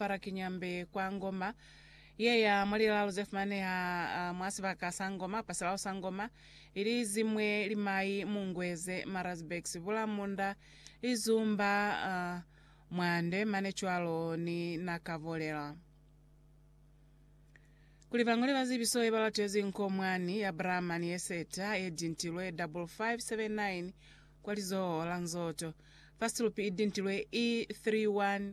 Parakinyambe kwa Ngoma ye ya mwa lilalo ze fumaneha mwa sibaka sa Ngoma pa silalo sa Ngoma, ili zi mwe limai mu Ngweze, Marazburg, Sibula, Munda, Lizumba, Mwande, mane cwalo ni Nakavolela. Kuli bañole ba zibiso ye ba latezi nko mwani ya Brahman ye seta ye dintilwe 5579 kwa lizoho la Nzoto, first loop i dintilwe E31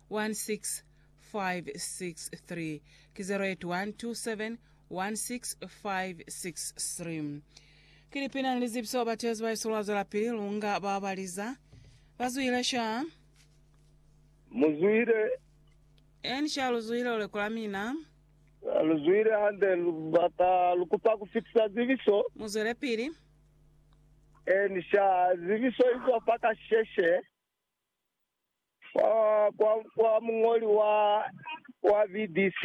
16563 ki 0812716563 Ki lipina ni lizibiso batezi ba Isolo ba zwelapili lunga ba ba liza, ba zwile sha. Mu zwile. Eni sha lu zwile u lekola mina. Ha lu zwile hande lu bata lu kupa ku fitisa zibiso. Mu zwelepili. Eni sha zibiso izo fa kasheshe. Kwa muñoli wa BBC,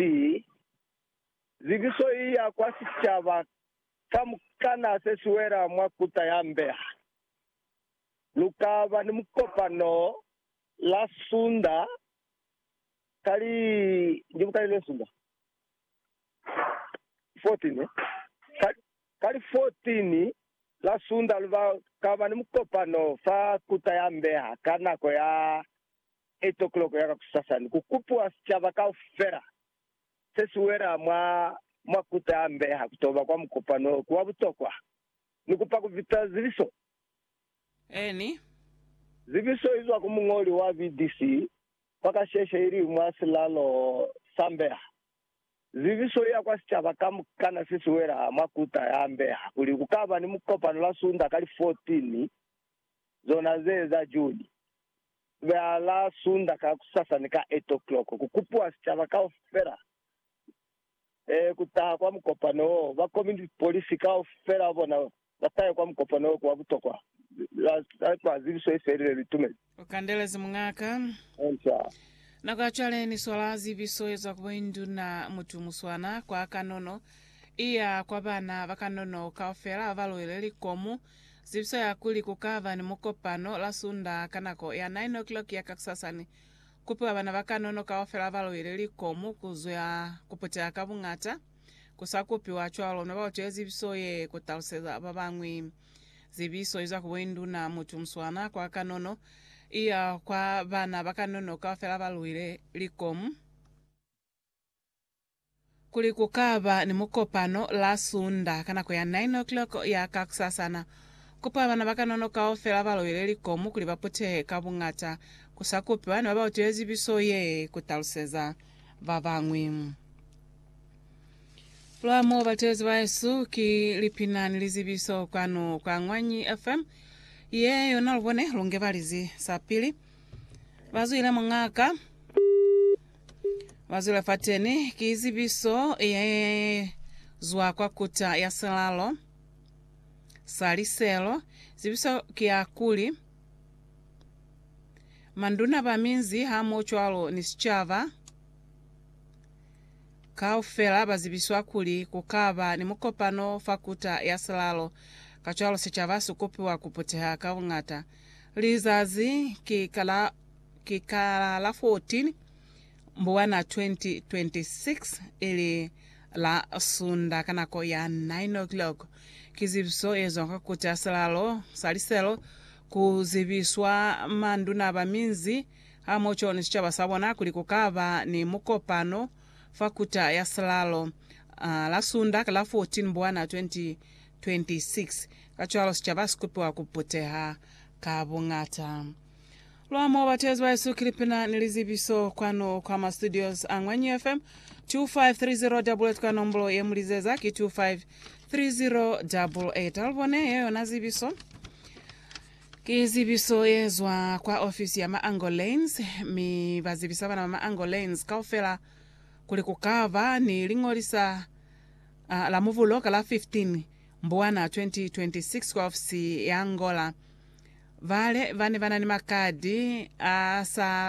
zikiso i ya kwa sicaba kamukana se si wela mwa kuta ya mbeha. Lu ka ba ni mukopano la Sunda ka li 14 ka La Sunda lu ba kaba ni mukopano fa Kuta ya Mbeha ka nako ya 8 o'clock ya kakusasani, ku kupiwa sicaba kaufela se si wela mwa mwa Kuta ya Mbeha ku to ba kwa mukopano o ku wa butokwa. Ni kupa ku vita zibiso. Eni. Zibiso i zwa ku muñoli wa VDC, fa kasheshe ili mwa silalo sa Mbeha. Zibiso ya kwa sicaba kamukana se si wela mwa kuta ya mbeha kuli ku ka ba ni mukopano la Sunda ka li 14 zona ze za Juni. Ku beha la Sunda kakusasa ni ka 8 o'clock ku kupiwa sicaba kaufela ku taha kwa mukopano wo. Ba community police kaufela bona Ba sa ya kwa mukopano wo wa butokwa ba sa fa zibiso ye felile litumelo. U kandelezi muñaka. Answer. Nako ya cwale ni swala zibiso ye zwa ku boinduna mutu muswana kwa kanono i ya kwa bana ba kanono kaufela ba ba luile likomu. Zibiso ya kuli ku ka ba ni mukopano la Sundaa ka nako ya 9:00 ya kakusasa ni kupiwa bana ba kanono kaufela ba ba luile likomu ku zwa ku puteha ka buñata. Ku sa kupiwa cwalo, ne ba utile zibiso ye ku taluseza ba bañwi. Zibiso izwa ku boinduna, mutu muswana, kwa kanono, iya kwa bana ba kanono kaufela ba luile likomu, kuli ku ka ba ni mukopano la Sunda ka nako ya 9:00 ya kakusasana. Kupa bana ba kanono kaufela ba luile likomu kuli ba putehe ka buñata. Ku sa kupiwa, ne ba utile zibiso ye ku taluseza ba bañwi. Lwa mo batezi baesu ki lipina ni lizibiso kwanu kwa Ngwanyi FM. Ye yona lubone lunge balizi sapili. Bazwile mungaka. Bazwile fateni ki zibiso ye zwa kwa kuta ya selalo. Saliselo. Zibiso ki ya kuli. Manduna ba minzi hamo cwalo ni sichaba. Kaufela ba zibiswa kuli ku ka ba ni mukopano fa Kuta ya Silalo, kacwalo sicaba si kupiwa ku puteha ka buñata. Lizazi ki ka la, ki ka la 14 Mbuwana 2026, ili la Sunda ka nako ya 9:00. Ki zibiso ye zwa kwa Kuta ya Silalo. Saliselo, Ku zibiswa manduna ba minzi, Ha mo coni sicaba sa bona kuli ku ka ba ni mukopano fa kuta ya silalo la Sunda ka la 14 Mbwana 2026. Kacwalo sicaba si kupiwa ku puteha ka buñata. Lwa mo batezi ba Yesu Kilipina ni lizibiso kwanu kwa ma studios a Ñwanyu FM, 253088 ka nombolo ye mu lizeza ki 253088. Ha lu bone ye yona zibiso. Ki zibiso ye zwa kwa ofisi ya Maangolens, mi ba zibisa bana ba Maangolens kaufela kuli ku ka ba ni liñolisa a, la Mubulo ka la 15 Mbuwana 2026 kwa ofisi ya Angola. Bale ba ne ba na ni makadi a sa